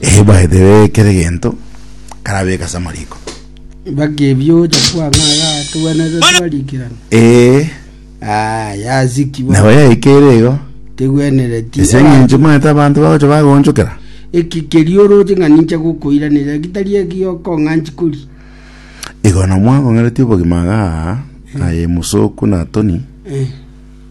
Eh, by the way kere gento karabeka ase amariko mpaka ebio ocha kwang'a yatwenerete twarikirana eh ah yazikibwa nabo yaikere igo tegwenereti ase eng'encho maete abanto bagocha bagonchokera eki kerio oroche ng'a ninche gokoiranera gitari egioko ng'a nchikori igo na mwakong'eretie obogima iga aye musoku na toni eh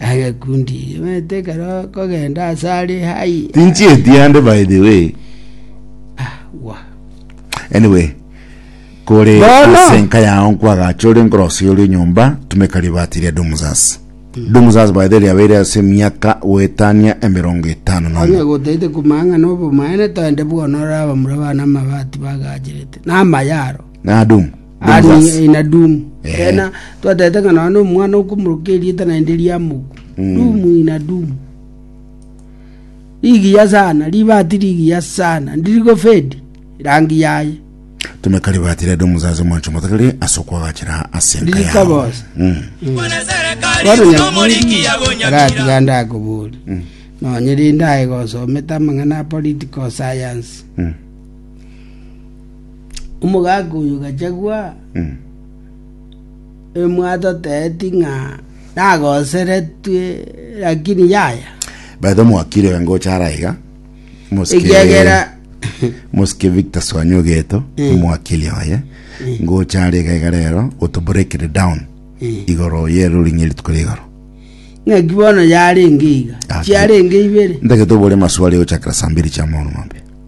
Agakundi yemete ekero kogenda ase are hai. Tinchi etiande by the way. Ah, wa. Anyway, kore Bono. ase enka yao nkwagacha ore nkorosia oria nyomba tumeka ribati ria Domusas. Domusas by the way riabeire ase emiaka goetania emerongo etano na Onye omo. gotaete kumang'a na obomaene toende buna orabamura bana amabati bagacherete. Na amayaro. Na Doom. Ari Benzas. eh, ina doom Eh. ena twatete ng'a nonya omwana okomoroka erieta naende riamoku Mm. doom ina doom rigiya sana ribati rigiya sana ndirigofedi rangi yaye tumekari batire ndo muzazi mwancho motagari asokwagachira asenka Ndiri yao kabosa. Mm. bono nyaburi aratiga ndakobori nonya rinde aye gosomete amang'ana a political science Mm. Omogaka oyo gachagua emwate oteeti ng'a nagoseretwe, lakini yaya. Baitha mwakire iga ngocha ara iga. Mosike- Ekiagera Mosike Victor Swanyi Ogeto, Eh. omwakiri oye. Ngocha are iga iga rero, goto break it down. Eh. Igoro ye ruling erituko ria igoro. ng'aki bono yarenge iga, Ah, chiarenge ibere. Ntagete obore maswali gochakera saa mbiri chia maono mambia.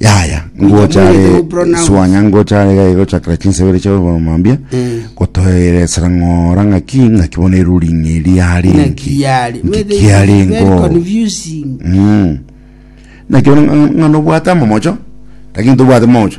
Yaya, ngocha Nyamunete are mupronounce. swanya ngocha are gai gochakera chinsebere chia oboro mambia Mm. gotoeresera ng'ora ng'aki ng'aki bona eruri ng'eri are Ng'a enki kiari. Nki Very- kiare very enko confusing. Mm. naki bona ng'a- ng'a nobwate amomocho lakini tobwate mocho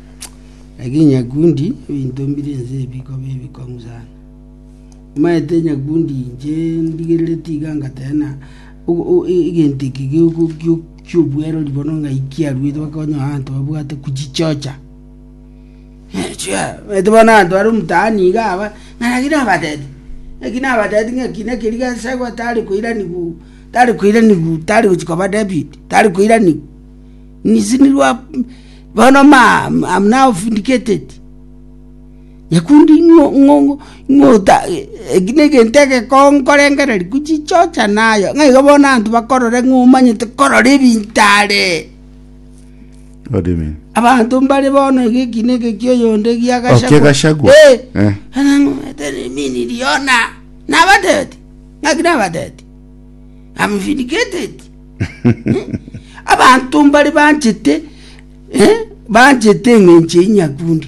na chinyakundi ebintombire ense ebikobe ebikong'u sana. Maete enyakundi inche ndigerere tiga ngatena o- o- e- egento eki gio- gio- kiobwerori bono ng'aikia arwete bakonya abanto babwate kuchichocha chia maete bono abanto bare omtaani iga aba ng'a naki nabateti naki nabateti ng'a eki naki eria gasegwa tari koiraniwu tari koiraniwu tari gochia koba David tari koiraniwu. Nisinirwa bono naofindigeteti, nyakundi ing'ota eki negento egekongu nkorengereria gochichocha naye, ng'a igo bono abanto bakorore ng'a omanyete korora ebinto are. Amen. Abanto mbare bono iga ekina eke kia oyonde gia Oh, kia Gachagua. Eh. Eh. Anang'umete niminirie yona. Nabatebeti. Ng'aki nabatebeti? I'm vindicated. Abanto mbare banchete, eh, banchete eng'encho ya Nyakundi.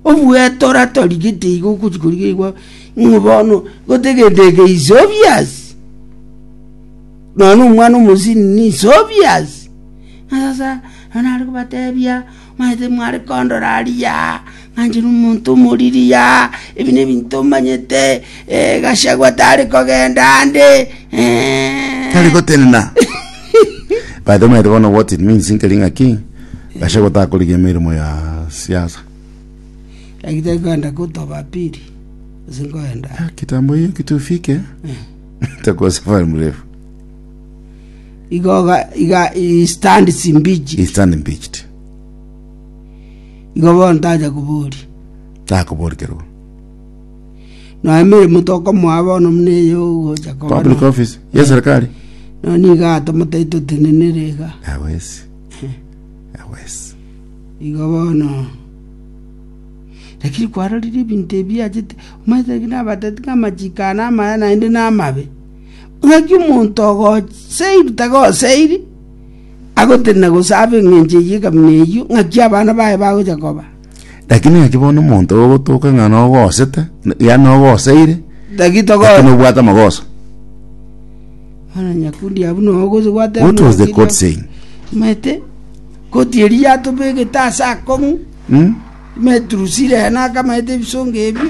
Obueta oratorigetie igo ogochi korigia igwa ng'o bono gotegendeke is obvious. Nono omwana omosini ni is obvious. Sasa anare kobatebia Manye timware kondora aria ng'anchire omonto omoriri aa? Ebi nebinto omanyete, Gachagua tari kogenda ande. Tari gotenena. By the way, omanyete bono what it means nkeri ng'a ki? Gachagua takorigia emeremo ya siasa. Like tari kogenda gotoba pili, ase nkogenda. Kitambo hiyo kitu ufike. Itakuwa safari mrefu. igoga iga he stands in beach he stand impeached igo bono taja kubori takoborkerwa na emirimo tokomoa bono muna eyo gocha koba public no- office ya serikali no niga atomotari totenenere iga awesi awesi igo bono lakini kwarorire ebinto ebi achete omanyete ng'a nabatete ng'a amachiko aya namaya naende namabe Ng'aki omonto ogoseiri tagoseiri agotenena gose abe engencho eyio ekamina eyio, ng'aki abana baye bagocha koba? Lakini ng'aki bono omonto ogotoka ng'a nogosete, yaani nogoseire, Ng'aki togo lakini obwate amagoso. Bono Nyakundi abwo nao ogocha gwateba What was the ng'aki quote ria- saying? Omanyete, koti eria yatobegete ase akong'u, Hmm? imeturusire ena akamanyete ebisongo ebio,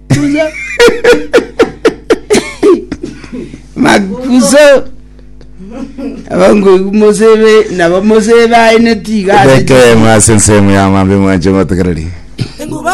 Buya. makuso abangoigu mosebe nabo mosebe aye netiga ase Bekeremo ase ensemo y'amambia mwanche motegereri. Enguba